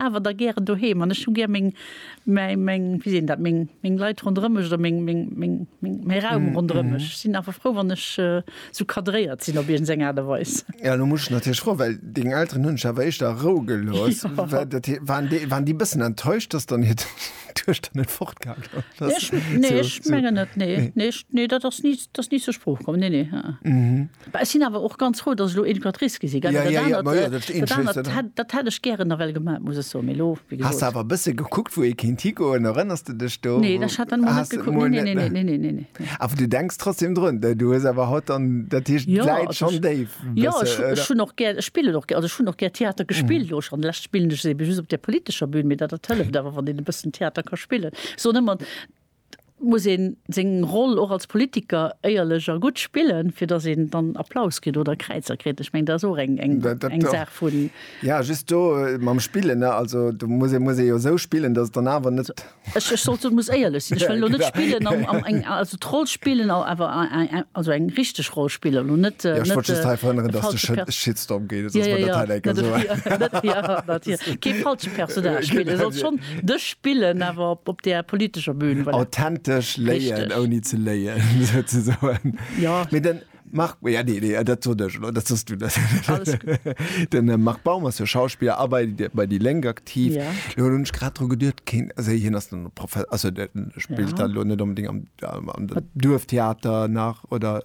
awer da gären doheem an ech hu gär meng, meng, wéi seet een dat, meng, meng Leit ronderëm mech oder meng, meng, meng, meng, mäi Raum ronderëm mech. Ech sinn awer frou, wann ech esou cadréiert sinn op iergendeng Aart a Weis. Jo, elo muss ech natierlech froen, well deng Elteren hunn dech awer éischter a Rou gelooss. Waren déi e bëssen enttäuscht, dass dann hiert Duechter net fortgaangen ass? Nee, ech mengen net, nee. Nee, dat ass ni zur Sprooch komm, nee, nee. Mä ech sinn awer och ganz frou, datt ech elo Educatrice gi sinn, gell, well dat anert, dat hätt ech gären nawell gemat, muss ech soen, mee elo, wéi gesot. Has de awer e bësse gekuckt, wou ee kéint higoen? Erënners de dech do? Nee, ech hat dann emol net gekuckt, nee, nee, nee, nee, nee, nee. Awer du denks trotzdem drun? Du hues awer haut dann, dat heescht, d'Läit schonn déif e bësse, oder? Jo, ech hunn och gär, ech spillen och gär, also ech hunn och gär Theater gespillt, elo schonn. Lech spillen ech se eben just op där politescher Bühn, mee dat dat hëlleft awer, wann een e bëssen Theater ka spillen. Ech soen ëmmer, muss een seng Roll och als Politiker éierlech a gutt spillen, fir datt een dann Applaus kritt oder Kräizer kritt. Ech mengen, dat ass och eng Saach vun. Jo, just do mam Spillen, ne, also do muss ee, muss ee jo esou spillen, datt et dann awer net. Ech sollt soen, muss éierlech sinn. Ech wëll elo net spillen, eng, also d'Roll spillen, awer also eng richteg Roll spillen, elo net. Jo, ech wollt just hei verhënneren, datt de Shitstorm geet, soss mer dat hei. Kee falsche Personnage spillen. Dech spillen, awer op där politescher Bühn. Voilà. Authentesch léien, ouni ze léien, souzesoen. Ja. Mee den Marc, ja, nee, nee, dat sot ech lo, dat sos du. Den äh, Marc Baum ass jo Schauspieler a bei, bei Die Lenk aktiv. Ja. Lo hunn ech grad dru geduert, keen, also hien ass dann Profe, also der spillt ja. dann lo net unbedingt am, am, am Duerftheater nach oder.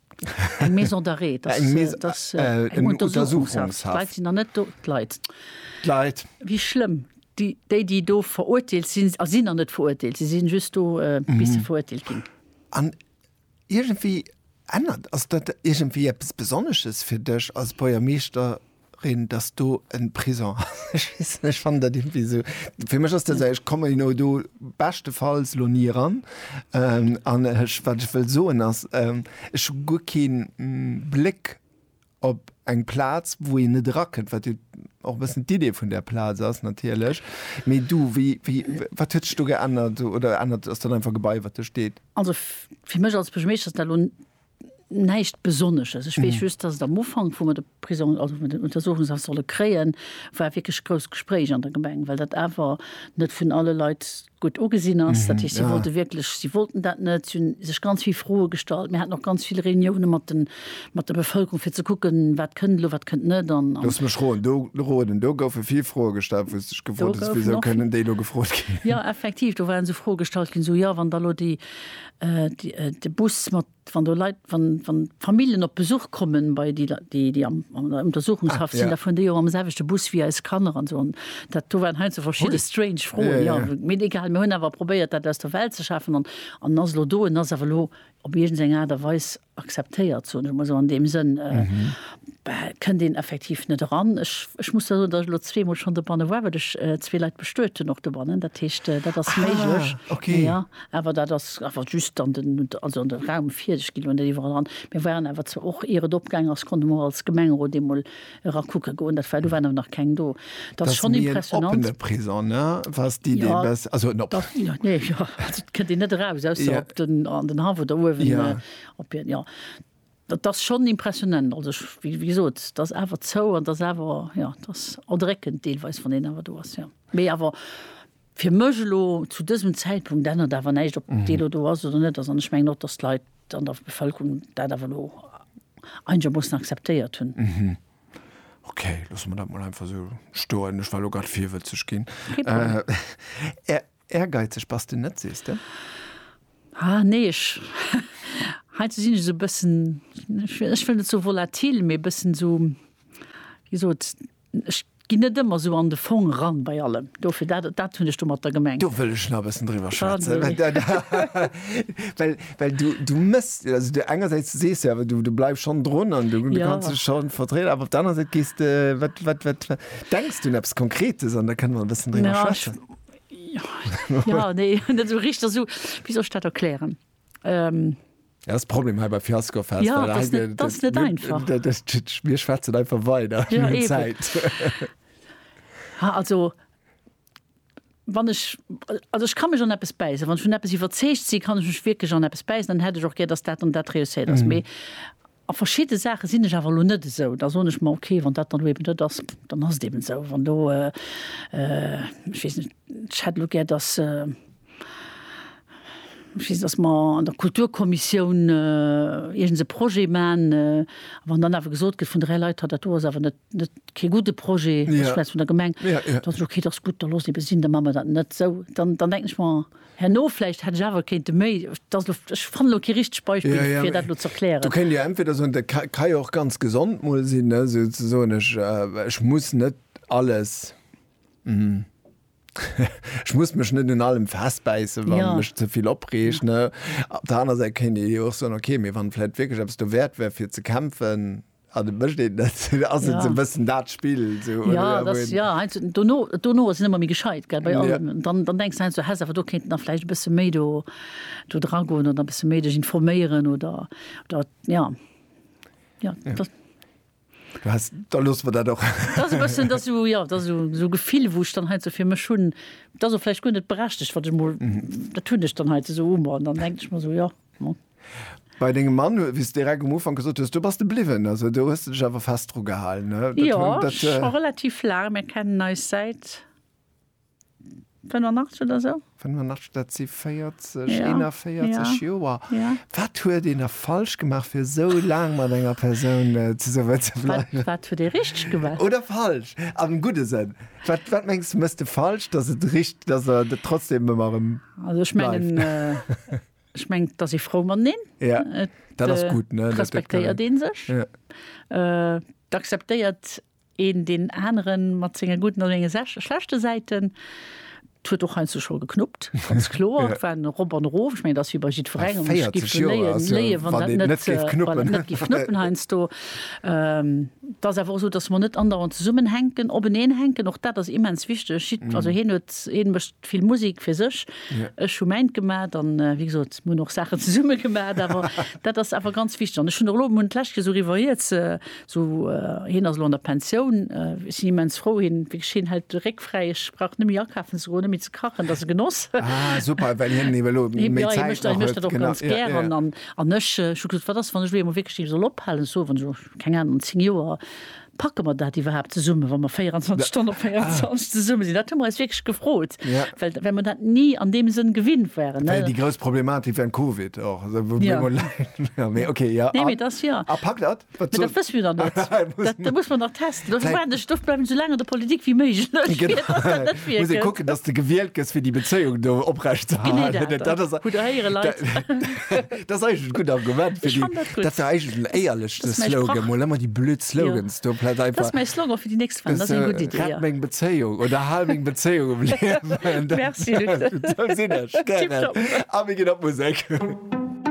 Eng Maison d'arrêt, dass, Eng Maison- dass äh, äh, eng eng Untersuchungshaft. Untersuchungshaft. D'Leit sinn da net do, d'Leit. D'Leit. Wie schlëmm. Déi, déi, déi do verurteelt sinn, a sinn der net verurteelt, si sinn just do, äh, bis se verurteelt ginn. An iergendwéi ännert, ass dat iergendwéi eppes Besonnesches fir dech als Buergermeeschter? Reen dass do en Prison ass, ech weess net, ech fannen dat irgendwie sou, fir mech ass dat sou, ech kommen elo do beschtefalls elo ni eran an ech, wat ech wëll soen ass, ech hu guer kee Bléck op eng Plaz wou een net erakënnt, wat jo och e bëssen d'Idee vun där Plaz ass natierlech. Mee du, wéi, wéi, wat huet sech do geännert oder ännert, ass dat einfach e Gebai wat do steet? Also fir mech als Buergermeeschter ass dat elo Näischt Besonnesches. Ech weess just, dass et am Ufank, wou mer de Prisong, also wou mer den Untersuchungshaft solle kréien, war wierklech grousst Gespréich an der Gemeng, well dat awer net vun alle Leit gutt ugesinn ass. Dat heescht, si wollte wierklech, si wollten dat net, si hu sech ganz vill Froe gestallt. Mir haten och ganz vill Reunioune mat de, mat der Bevëlkerung, fir ze kucken, wat kënnt elo, wat kënnt net. An, an. Looss mech roen, do, roden, do goufe vill Froe gestallt, wou s de dech gefrot hues, Wisou kënnen déi elo gefrot ginn? Jo, effektiv, do waren esou Froe gestallt ginn, esou, Jo, wann da elo déi De Bus mat, wann do Leit, wann Familljen op Besuch kommen bei déi, déi an der Untersuchungshaft sinn, da fueren déi och mam selwechte Bus wéi eis Kanner an esou. Dat do waren heiansdo verschidde strange Froen, jo. Mee egal, mir hunn awer probéiert, dat aus der Welt ze schafen. An ass elo do, en ass awer elo op iergend eng Aart a Weis Akzeptéiert, soen ech emol esou an deem Sënn, kënnt een effektiv net eran. Ech, ech muss da soen, datt ech elo zweemol schonn dobanne war, well ech zwee Leit bestuet hunn och dobannen. Dat heescht, dat ass méiglech. Ah, okay. Jo, awer dat ass awer just an den, also an de Raum fir. Ech ginn elo net iwwerall eran. Mir waren awer zwar och, ier et opgaangen ass, konnte mer och als Gemengerot eemol era kucke goen, dat war, do waren awer nach keng do, dat ass schonn impressionant. Kënnt een net eraus aus op den an den Haff oder uewen op hien, jo dat ass schonn impressionant. Also ech wéi gesot, et ass awer zou an et ass awer, jo et ass erdréckend deelweis, wann een awer do ass, jo. Mee awer. Fir mech elo zu dësem Zäitpunkt ännert awer näischt, ob dee elo do ass oder net ass. An ech mengen och, datt d'Leit an der Bevëlkerung dat awer elo einegermoossen akzeptéiert hunn. Okay, loosse mer dat mol einfach esou stoen. Ech war elo grad virwëtzeg ginn. Kee Problem. Ehrgeizeg bass de net, sees de? Ah, nee, ech, heiansdo sinn ech esou e bëssen, ech wëll net sou volatil, mee e bëssen esou, wéi gesot, Ech ginn net ëmmer esou an de Fong eran bei allem. Dofir, dat, dat hunn ech domatter gemengt. Do wëll ech nach e bëssen driwwer schwätzen. Well, well du, du mëss, also du engersäits sees du awer, du, du bleifs schonn drun an du, du Ja. kanns dech schonn vertrieden, awer op der anerer Säit gees de, wat, wat, wat, wat denks du un eppes Konkretes an da kënne mer e bëssen driwwer Ja, ech, schwätzen. ja, nee, net esou richteg, esou, wéi soll ech dat erklären? Ähm. Dat ass de Problem hei bei Fiasco Fest. Ja, dat ass net, dat ass net einfach. Mir schwätzen einfach weider. Mir hunn Zäit. Ha, also, wann ech, also ech ka mech an eppes bäissen. Wann ech vun eppes iwwerzeegt sinn, kann ech mech wierklech an eppes bäissen. Dann hätt ech och gär, datt dat an dat reusséiert ass. Mee. A verschidde Saache sinn ech awer elo net esou. Da soen ech, ma okay, wann dat dann elo eeben dat ass, dann ass et eeben esou. Wann elo, ech weess net, ech hätt elo gär, datt, ech weess net, datt mer an der Kulturkommissioun iergends e Projet maachen, a wann dann awer gesot gëtt vun dräi Leit, ha dat do ass awer net, net kee gudde Projet, ech schwätz vun der Gemeng, da sot ech, okay, dat ass gutt, da looss ebe sinn, da maache mer dat net. Sou, dann denken ech mer, herno vläicht hätt ech awer kéinte méi, dat ass elo, ech fannen elo kee richtegt Beispill, fir dat elo ze erklären. Do kéint Dir entweder soen, dat ka jo och ganz gesond mol sinn, sou ze soen, ech muss net alles, ech muss mech net un allem festbäissen, wat mech ze vill opreegt. Op der anerer Säit kéint Dir jo och soen, okay, mee wann vläicht wierklech eppes dowäert wär, fir ze kämpfen, An et mécht een net, ass et esou e bëssen dat Spill? Jo, et ass, jo, heiansdo, dono, dono ass een ëmmer méi gescheit, gell, bei allem. Dann, dann denkst de heiansdo, häss awer do kéinten nach vläicht e bësse méi do, do dragoen oder e bësse méi dech informéieren oder, oder, jo. Jo, dat. Du häss, da loosse mer dat och. Dat ass e bëssen, dat ass esou, jo, dat ass esou, esou e Gefill, wou ech dann heiansdo fir mech hunn, dat ass och vläicht guer net berechtegt, wat ech emol, dat hunn ech dann heiansdo esou emol an dann denken ech mer esou, jo. Bei dengem Mann, wéi s de direkt um Ufank gesot hues, do bass de bliwwen, also do hues de dech awer fest dru gehalen. Jo, scho relativ laang. Mir kennen eis säit 85 oder esou. 85, dat si 40, 41 Joer. Wat huet een da falsch gemaach, fir esou laang mat enger Persoun zesummen ze bleiwen? Wat huet ee richteg gemaach? Oder falsch, am gudde Sënn. Wat, wat mengs de, méchs de falsch, dass et richt-, dass der trotzdem ëmmer erëm bleift? Also ech mengen. Ech meng da si frou mat neen. Ja, dat ass gutt ne. Respektéiert een sech. Ja. Äh, d'akzeptéiert een deen aneren mat senge gudden oder senge sech schlechte Säiten. D'huet och heiansdo scho geknuppt, ganz kloer. Et war en Erop an Erof. Ech meng, dat ass wéi bei jiddwerengem. Ech giff 40 Joer léien, ass jo, léien, wann wann dat een net, net géif knuppen. wann et net giff knuppen heiansdo. Ähm, et ass awer och esou, dass mer net andauernd zesummenhänken, openeen hänken. Och dat ass immens wichteg. Jidd, also hien huet, hien mécht vill Musik fir sech. Ech hu mäint gemat an wéi gesot mir hunn och Saachen zesumme gemat, awer dat ass awer ganz wichteg. An ech hunn och elo hunn d'lescht Kéier esou revoiert, esou hien ass elo an der Pensioun, ech sinn immens frou, hien wierklech hien hält de Réck fräi, ech brauch net méi akafen ze goen, net méi ze kachen, dat ass e Genoss. Ah super, well hien ebe lo méi Zäit nach huet. Hie mécht dat, hie mécht dat och ganz gären an ech hu gesot, wat ass wann ech elo eemol wierklech soll ophalen, ech soe wann ech elo, keng Ahnung, an 10 Joer Packe mer dat iwwerhaapt zesummen, wa mer 24 Stonnen op 24 zesumme sinn? Dat hu mer eis wierklech gefrot, well well mer dat ni an deem Sënn gewinnt waren. Dat war jo déi grouss Problematik wärend Covid och, esou wou mir emol laang, mee okay, jo. Nee, mee dass jo. A packt dat? Wat soen. Mee dat wësse mir nach net. Dat muss mer nach testen. Dofir waarden ech, dofir bleiwen ech esou laang an der Politik wéi méiglech, fir dass dat net virkënnt. Muss ee kucken, dass de gewielt gëss fir déi Bezéiung do oprecht ze halen. Genee dat. Hutt der héiere Leit. Das eich en gutt Argument fir di dat der eich den éierlechste Slogan mol ëmmer déi blöd Slogans do plat einfach. Das méi Slogan fir di nächst Wand ass eng gutt Iddi. Rett meng Bezéiung oder hal meng Bezéiung um Liewen. Merci Luc. Sinn ech gären. A mir ginn op Musek.